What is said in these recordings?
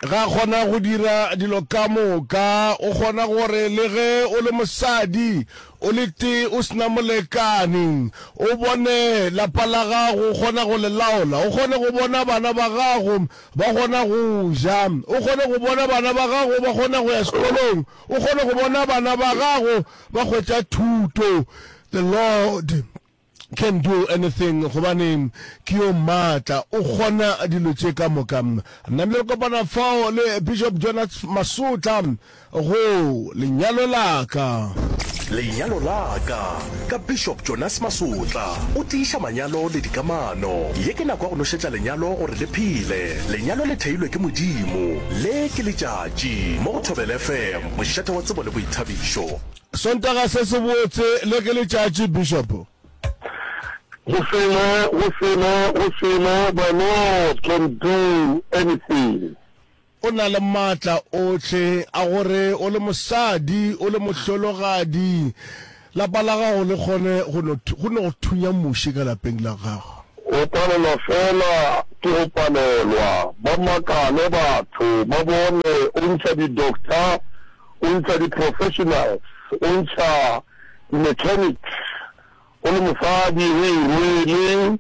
ga a kgona go dira dilo ka moka o kgona gore le ge o le mosadi o le tee o sena molekani o bone lapa la gago o kgona go le laola o kgone go bona bana ba gago ba kgona go ja o kgone go bona bana ba gago ba kgona go ya sekolong o kgone go bona bana ba gago ba hwetša thuto the lord Can do anything, gobane ke yo maatla, o kgona dilo tše ka moka. Namile kopana fao le Bishop Jonas Masotla go Lenyalo la ka. Lenyalo la ka, ka Bishop Jonas Masotla. O tiiša manyalo le dikamano. Ye ke nako ya go nošetša lenyalo gore le phele. Lenyalo le theilwe ke Modimo. Le ke letšatši, mo go Thobela FM, mošate wa tsebo le boithabišo. Sontaga se se botse le ke letšatši, Bishop. Go selo, go selo, go selo the Lord can do anything. O na le maatla ohle a gore o le mosadi, o le mohlologadi, lapa la gago le kgone go no, go no go thunya muši ka lapeng la gago. O palelwa fela ke go palelwa. Ba makale batho, ba bone o ntšha di-doctor, o ntšha di-professionals, o ntšha di-mechanics, o le mosadi, o e rwele,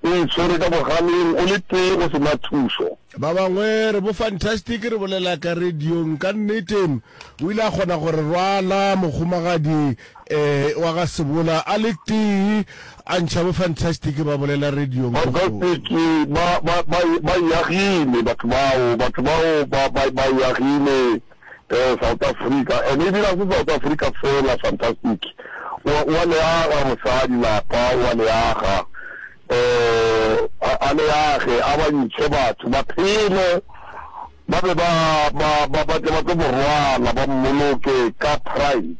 o e tshwere ka bogaleng, o le tee, o se na thušo. Ba bangwe re bo fantastic re bolela ka radiong. Ka nnete, o ile a kgona go re rwala, Mohumagadi. Ee, wa ga Sebola a le tee a ntšha bo Fantastic ba bolela radiong ko kgole. Fantastic ba, ba, ba, ba eagile batho bao, batho bao ba, ba, ba eagile eh, South Africa. And ebile ga se South Africa fela, Fantastic o, o a le aga mosadi lapa, o a le aga. Eh, a, a le age, a ba ntšhe batho ba phele. Ba be ba, ba, ba, ba tle, ba tlo mo rwala, ba mmoloke ka Pride.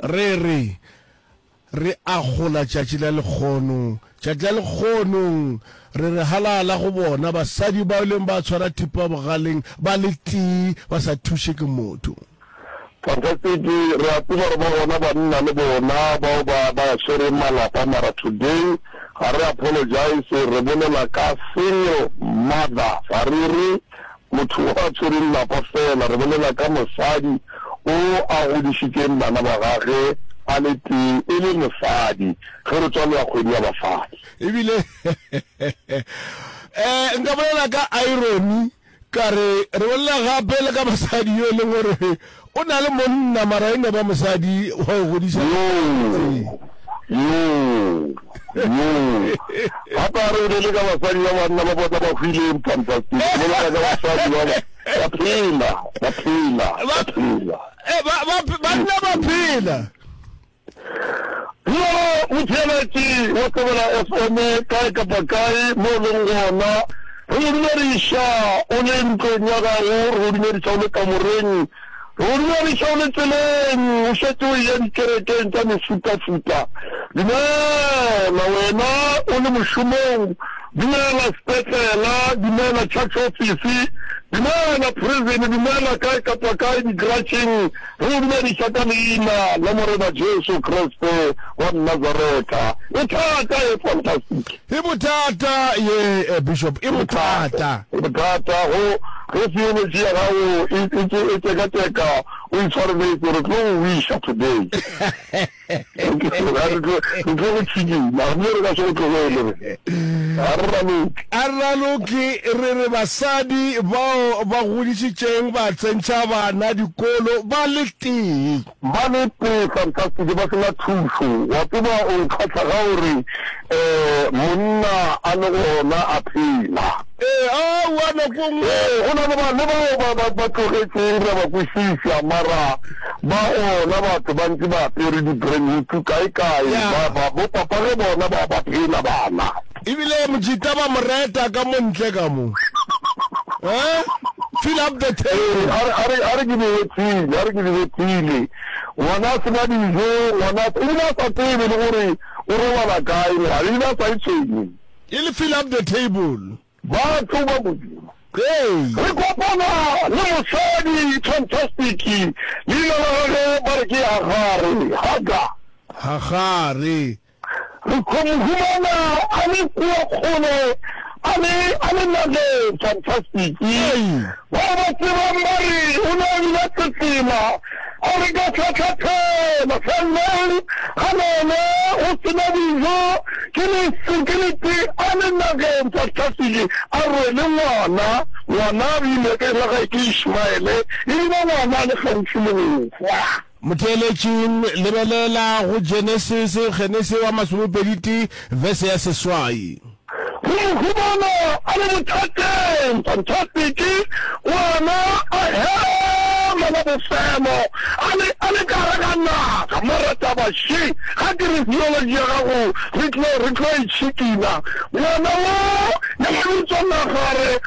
Re re, Re akgola tšatši la lekgono, tšatši la lekgonong, re re halala go bona, basadi bao leng ba tshwara thipa bogaleng, ba le tee, ba sa thuše ke motho. Fantastic, re a tseba gore ba gona ba nna le bona bao ba ba swereng malapa mara today ga re apologize re bolela ka single mother ga re re motho o a tshwereng lapa fela re bolela ka mosadi o a godišitšeng bana ba gage a le tee e le mosadi ge re tswalela kgwedi ya basadi. Ebile eh nka bolela ka irony. Ka re, re bolela gape le ka mosadi yo e leng gore o na le monna mara e no ba mosadi wa go godiša gape a re be le ka basadi ba banna ba bona ba hwileng fantastic bolela ka basadi ba ba phela ba phela ba phela ba ba ba phela Yo motheeletši wa Thobela FM kae kapa kae mo o leng gona, re go dumediša o le ntlong ya gago, re go dumediša o le kamoreng, re go dumediša o le tseleng, o šetše o eya dikerekeng tša mefutafuta. Dumela wena o le mošomong, dumela sepetlela, dumela church office, dumela prison, dumela kae kapa kae, digrasheng, Re go dumediša ka Leina la Morena Jesu Kriste wa Nazareta. E thata, e fantastic. E bothata ye, Bishop, e bothata. E bothata, go, ge theology ya gago e, e, e tšekatšeka, o itshwareletše, re tlo go wiša today. Arraloki re re basadi bao ba godišitšeng ba tsentšha bana dikolo ba le tee. Ba le tee fantastic ba sena thušo. Wa tseba o nkgahla ga o re monna a le gona a phela. Ee, aowa, nako e nngwe. Ee, go na le ba, le bao ba, ba, ba tlogetšeng, ra ba kwešiša, mara ba gona, batho ba ntše ba apere dibrenyutu kaekae, Ya. ba, ba, bopapa ge bona ba, ba phela, bana. Ebile Mojita ba mo reta ka mo ntle ka mo. Ee, fill up the Ee, table. a re, a re, a re ke di hwetšile, a re ke di hwetšile. Ngwana a se na dijo, ngwana a, ebile a sa tsebe le gore o robala kae ngwana, ebile a sa e tshwenye. E le fill up the table. Ba tlo ba modimo. Ee. Re kopana le mosadi fantastic, leina la gagwe ba re ke Hagare, Hagar. Hagare. Re tlo mo humana a le kua kgole, a le, a le nageng fantastic. Ee. Ba o ba tsebang ba re o ne a dula Tsetsima a re ka tlhatlhathela Selbourne ga none go se na dijo ke leso ke le te a le nageng tsa Tlhasedi a rwele ngwana, ngwana a bile ka e la gae ke Ishmaele e bile ngwana a le gaufi le go hwa. Motheeletšing, lebelela go Genesis, Genese wa masomepedi tee, vese ya seswai. Go mo humana a le bothateng, fantastiki, ngwana a hema ka bofemo a le, a le ka gare ga naga. Mara taba še, ga ke re theologi ya gago re tlo, re tlo e tšhikina. Ngwana wo, ya ba bitšwa naga, a re,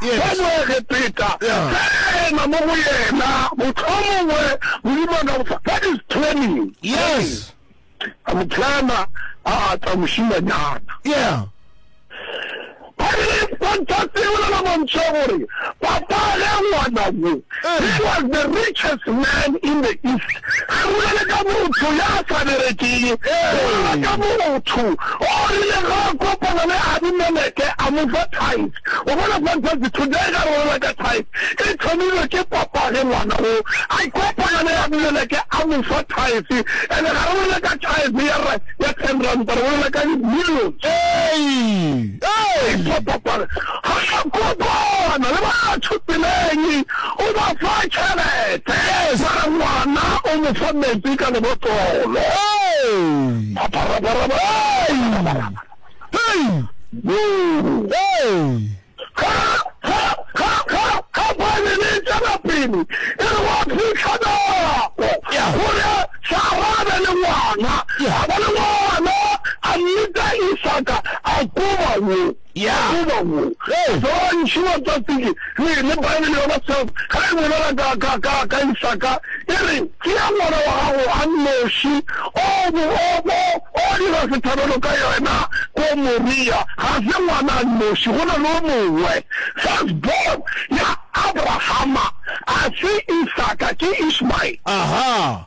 Jesu wa Moegepeta, tsena mo go yena, mohlomongwe Modimo a ka go fa, that is training. Yes. A mo tsena, a ata mošimanyana. Yeah. Ba re, Kontase e bolela mantšu a gore, Papa, ge ngwana wo He was the richest man in the East. Re bolele ka motho ya sa berekego, goba ka motho o rile ge a kopana le Abimeleke a mo fa tithe. O bona, Fantasy, today ge re bolela ka tithe, e thomilwe ke papage ngwana wo a kopana le Abimeleke a mo fa tithe. And ga re bolele ka tithe ya ra, ya ten ranta, re bolela ka di millions. Hey! Hey! Ke papage. Ga a kopana le batho tseleng, o ba fa tšhelete. Sa re ngwana o mo fa metsi ka lebotlolo. Phapharabaraba, Khamphani e tšwela pele e re gwa fihla nako ya gore Sara a be le ngwana. A ba le ngwana, a mmitsa Isaka, a koba wo. Ya. Goba wo. Ge. Dontši wa tsa tsiki, le, le Beibele ya Baself, ga e bolela ka, ka, ka, ka Isaka, e re, Tšea ngwana wa gago a nnoši, o bo, o bo, o dira sehlabelo ka yena ko Moria. Ga se ngwana a nnoši, go na le o mongwe. Firstborn ya Abrahama ga se Isaka, ke Ishmael. Aha.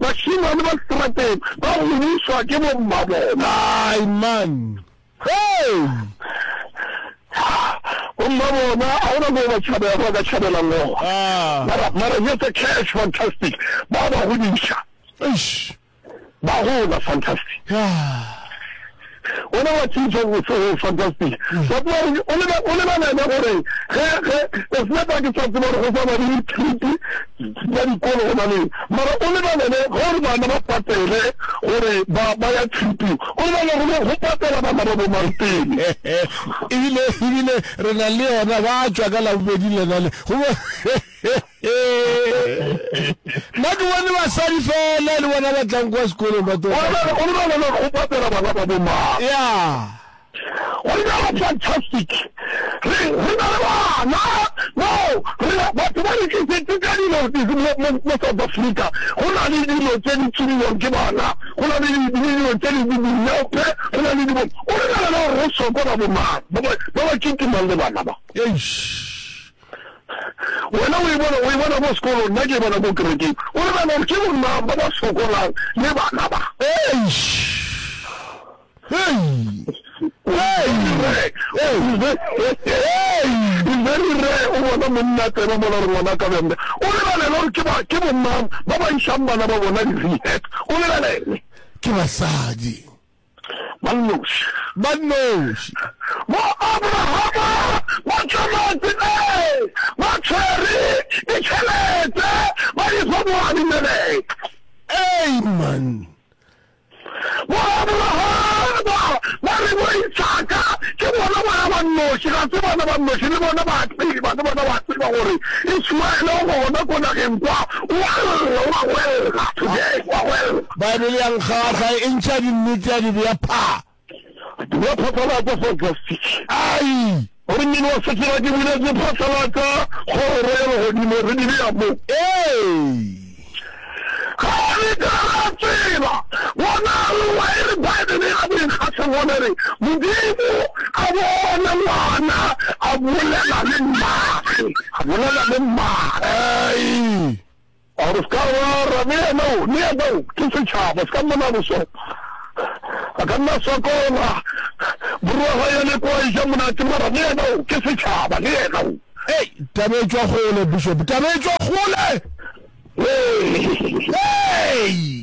Bašemane ba seterateng ba gomišwa ke bommabona. Amen. Hey! Bommabona, ga gona moo ba tšhabela, ba ka tšhabelang gona. Ah. Mara, mara, just a cash, fantastic. Ba ba godiša. Eish. Ba gola, fantastic. Yeah. Wena wa tsebisa go go fantastic. Ba tla re o le o le bana ba gore ge ge o se ba ke sa tseba go sa ba di trip ya dikolo gona le mara o le bana le gore bana ba patele gore ba ba ya trip. O le bana go go patela bana ba bo marteng. Ebile ebile re na le yona ba tswa ka la bobedi le na le go nna ke bone basadi fela le bona ba tlang kwa sekolong ba go patela bana ba bomang ya go ina ba fantastic re re na le bana no re batho ba re tlisetse ka dilo mo south africa go na le dilo tse di tsiriwang ke bana go na le dilo tse di dinepe go na le dilo o re na le gore re sokola bomang ba ba kitimang le bana ba Wena o e bona, o e bona ko sekolong, nna ke e bona ko kerekeng. O nagana gore ke bomang ba ba sokolang le bana ba? Eish! Hei! Very rare o bona monna tsena mola re ngwana ka bjang bjang. O lebelela gore ke ba ke bomang ba ba išang bana ba bona di-rehab. O lebelele. Ke basadi. Ba nnoši. Ba nnoši. Bo Abrahama ba tšweletse pele ba tshwere ditšhelete ba di fa bo Abimeleke. Amen. Bo Abrahama ba re bo Isaka ke bona bana ba nnoši, ga se bana ba nnoši, le bona ba a tseba, le bona ba tseba gore Ismaele o gona ko nageng kwa, o a lla, o a gwella today, o a gwella. Baebele ya nkgahla, e ntšha dinnete ya di bea phaa. Dira phatlalatša fa o tla fihla. Ai! Gomme wa se tseba ke buletše phatlalatša kgoro ya legodimo, re di bea mo. Ee! Ga re ka ra tseba. Bona, lwa e re Baebele ya boikgahleng gona e re, Modimo a bone Ngwana a bolela le Mmaagwe, a bolela le Mmaagwe. Ai! A re se ka wa ra, le yena o, le yena o, ke setšhaba, se ka mmona boso. A ka nna sokola, morwa ga ya le kwa eja monate, mara le yena o, ke setšhaba, le yena o. Hei, taba e tšwa kgole, Bishop, taba e tšwa kgole! Hei! Hei!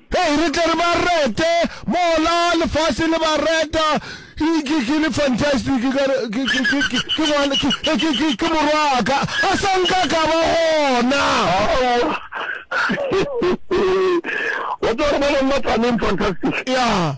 Hei, re tle re ba rete mola lefase le ba reta. Ke, ke, ke le fantastic, ka re, ke, ke, ke, ke, ke ngwana, ke, ke, ke, ke, ke morwaka. A sa nka ka ba gona. Aowa. Wa tseba gore ba bangwe ba tla neng fantastic? Ya.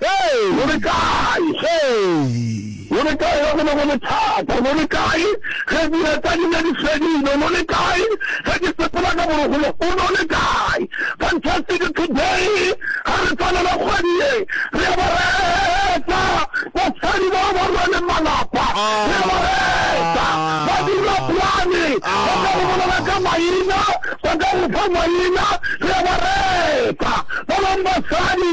Hei! Lo le kae? Hei! Lo le kae ge go ne go le thata? Lo le kae ge dira tsa lena di fedile? Lo le kae ge ke sepela ka borogolo? O lo le kae? Fantastic today! Ga re tswalela kgwedi ye, re ya ba reetsa basadi bao ba rweleng malapa, re ya ba reetsa ba dira plane, ba ka go bolela ka maina, ba ka go fa maina, re ya ba reetsa ba bangwe basadi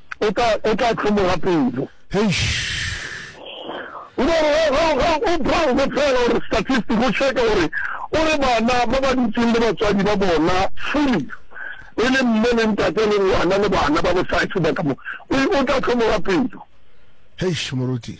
o tla, o tla hlomoga pelo. Eish. O tla re, ge, ge, ge o browse fela gore statistic, o checke gore, o re bana ba ba dutšeng le batswadi ba bona fully, e le mme le ntate le ngwana le bana ba bosadi sebaka mo, o, o tla hlomoga pelo. Eish, moruti.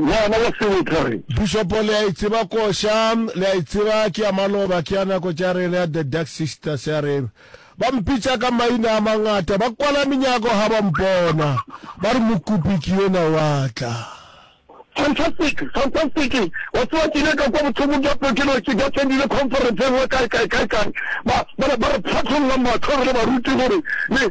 Ngwana wa sebetha re. Bishopo le a e tseba koša, le a e tseba ke ya maloba, ke ya nako tša rena ya The Dark Sisters ya re ba mpitša ka maina a mangata, ba kwala menyako ha ba mpona, ba re mokopi ke yona wa tla. Fantastic, fantastic, wa tseba ke ile ka kwa bothokong bja pelo ke no ke attendile conference engwe kae kae kae kae ba ba ba re phatlolla mahlo re le baruti gore le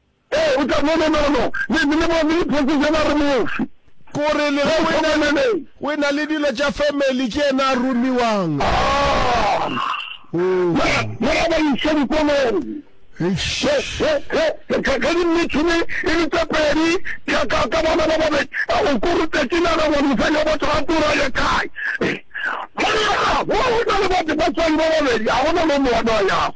Ee, o tla bona nono, le, le, le bone diphoofo tša ba re mofe. Ko re le re o ena le, o ena le dilo tša family, ke yena a romiwang. Aa! Oh. Ba, ba ya ba iša dikolong. Eish. Ge, ge, ge, ge, ge, ge dimmitšhini e le tše pedi ka, ka, ka bona ba babedi, a o ko rutetše naga gore mosadi wa batho ga tura ye kae. Monna, wo o na le batho, batswadi ba babedi, ga go na le o mongwe a no a yago.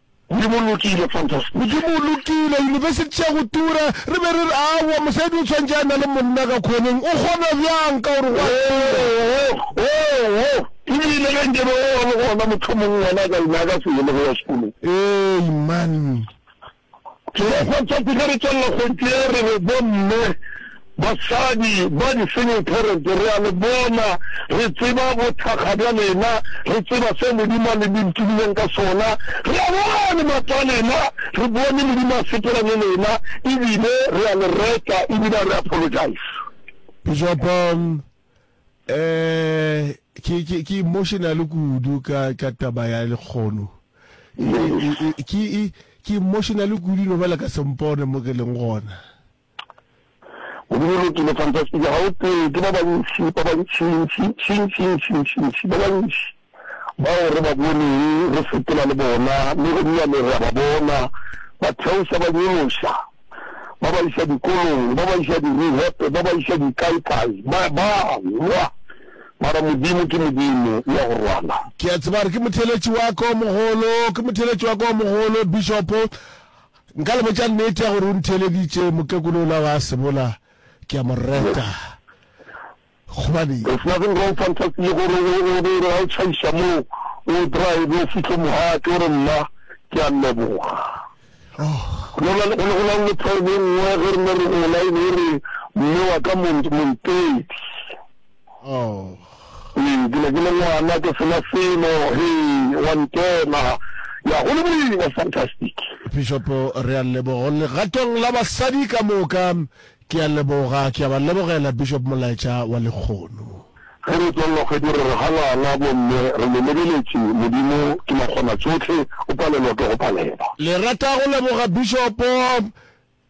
Modimo o lokile, fantastic. Modimo o lokile, yunibesithi tša go tura, re be re re, Aowa, mosadi o tshwantše a na le monna ka khoneng. O kgona bjang ka gore go a tura? Oo, oo, oo! Ebile ge nke be o ba le gona, mohlomong ngwana a ka lena a ka se yele go ya sekolong. Ee, man. Ke be, fantastic, ge re tswalela kgonthe ye, re re, Bomme, Basadi ba disenyekereke, re a le bona, re tseba bothakga bja lena, re tseba se Modimo a le bolokilileng ka sona. Re a boa le maatla a lena, re bone Modimo a sepela le lena, ebile re a le reta, ebile a re apologize. Bishop, um, eh, ke, ke, ke emotional kudu ka, ka taba ya lekgono. E, e, e, ke, e, ke emotional kudu no bala ka sempone mo ke leng gona. Modimo lokile fantastic ga o tseye ke ba bantši ba bantšintšintšintšintšintšintši ba bantši bao re ba boneng re sepela le bona le go nnyane re a ba bona ba theoša ba nyološa ba ba iša dikolong ba ba iša direhepe ba ba iša dikaekae ba ba lwa mara modimo ke modimo o ya go rwala ke a tsebare ke motheletši wa ko mogolo ke motheletši wa ko mogolo bishopo Nka le botša nnete ya gore o ntheeleditše, mokekolo ola wa sebola ke a mo reta. Gobane. There's nothing wrong Fantasy le gore o re gore ga o tšhaiša moo o drive o fihle mohate o re mma ke a leboga. Go na le go na le problem nngwe ge re ne re gola e be e re mme wa ka Montedi. Hei, ke ne ke le ngwana, ke sena selo, hei, wa ntena. Ya, go le boima, fantastic. Pišopo, re a leboga. Legatong la basadi ka moka, ke a leboga, ke a ba lebogela, Bishop, molaetša wa lekgono. Ge re tswalela kgwedi, re re ga ngwana, bomme, re le lebeletše, Modimo ke makgonatšohle, o palelwa ke go palelwa. Le rata go leboga, Bishopo,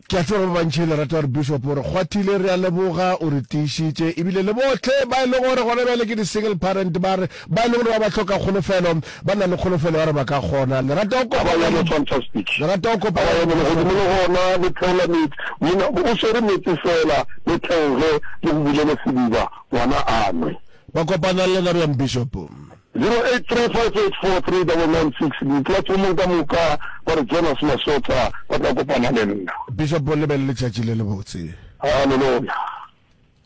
Ke a tseba ba bantši le rata gore Bishop o re kgwathile, re a leboga, o re tiišitše, ebile le bohle ba e lego gore gona bjale ke di-single parent ba re ba e lego gore ba ba hloka kgolofelo, ba na le kgolofelo ya gore ba ka kgona. Le rata go kopana le, le rata go kopana le Bishop. Godimo le gona le theola meetse, monna o swere meetse feela, le theoge le go bulele sediba ngwana a nwe. Ba kopana le lena bjang Bishop? 0835843996 Diplatfomong ka moka ba re Jonas Masotsa ba tla kopana le nna. Bishop, Lebelele tšatši le lebotse. Haleloya!